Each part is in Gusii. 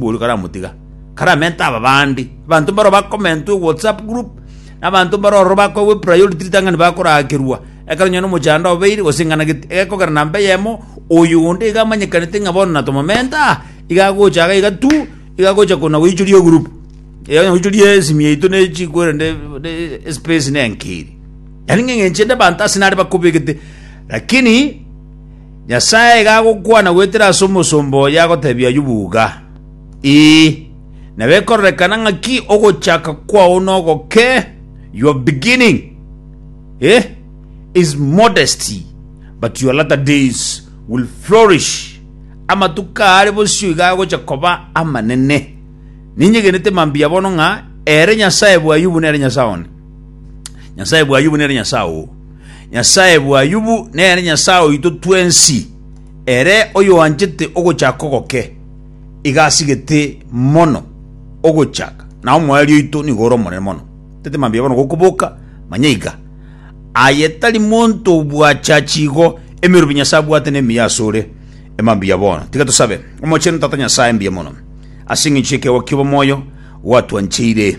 Oria karamotiga, karamente aba bande. Abanto mbaro bakomentwe WhatsApp group, na abanto mbaro ororo bakoegwe priority ritang'ani bakoraakerwa, ekero onye nomochando obeire gose ing'ana gete egekogera namba eyemo, oyo onde iga amanyekanete ng'a bono natomamente aa, iga agocha iga iga tu, iga agocha kona goichoria egroup. Eya onya goichoria esimi yaito ne echi korende ne espace nenki eri. Yaani ng'a eng'encho ende abanto ase nare bakobegete, lakini. Nyasae iga agokwana goetera ase omosomba oye agotebia Ayubu iga, Ee, na bekororekana ng'aki ogochaka kwao nogoke, your beginning, eh, is modesty, but your latter days will flourish. Amatuko aare bosio iga agocha koba amanene. Ninyegenete mambia bono ng'a ere Nyasae bw'Ayubu nere Nyasae one. Nyasae bw'Ayubu nere Nyasae oo. Nyasae bw'Ayubu nere Nyasae oito twensi, ere oyoanchete ogochaka ogoke, iga asigete mono ogochaka, na omoerio oito nigo ore omonene mono. Tete mambia bono gokoboka, manya iga. Aye tari monto obwache achi igo, emerobi Nyasae abwate nemiya asore. Emambia bono, tiga tosabe. Omochenu Tata Nyasae mbuya mono, ase engencho y'ekeegwa ki'obomoyo gwatwancheire.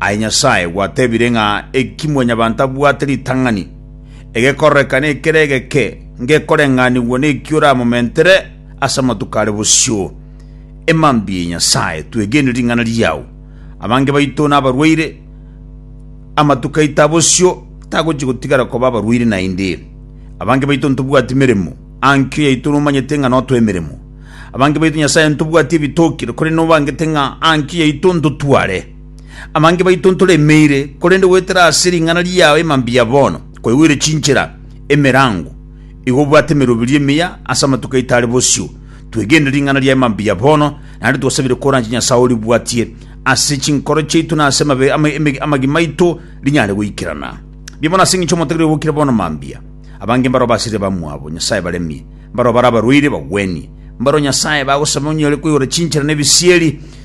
Aye Nyasae gwatebire ng'a eki mwanyabanto abwate ritang'ani, egekororeka nekere egeke, ngekoreng'anigwa neki oramomentere ase amatuko are bosio. E mambia, Nyasae, twegene ring'ana riao. Abange baito nabarwaire, amatuko aito a bosio tagochia gotigara koba abarwaire naende. Abange baito ntobwati meremo, aa nkio yaito nomanyete ng'a notwa emeremo. Abange baito Nyasae ntobwati ebitokire, korende nobangete ng'a aa nkio yaito ntotware. Amange baito ntoremeire, korende goetera ase ring'ana riao ime mbuya bono, kwaigwire chinchera, emerango, igo obwate emeroberio emiya ase amatuko aito are bosio. Twegenire ring'ana riao ime mbuya bono, naende twasabire koranche Nyasae oribwatie ase chinkoro chiaito na ase amabe- ama- eme- amagima aito rinyare goikerana. Mbuya bono ase engencho y'omotagera oyo bokire bono mambia. Abange mbareo basirire bamwabo Nyasae baremie, mbareo bare abarwaire bagwenie, mbareo Nyasae bagosaba onyare koigora chinchera na ebisieri,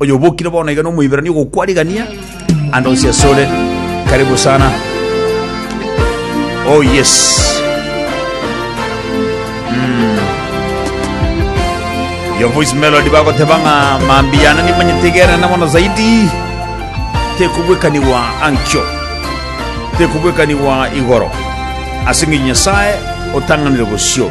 Oyobokire bono iga nomoiberania ogokwa rigania ande onsi asore karibu sana oh yes Mm. your voice melody bagoteba ng'a mambi yana nimanyetegera na mono zaidi tekubwekaniwa ankyo tekubwekaniwa igoro ase ng'enye nyasaye otang'anire bosio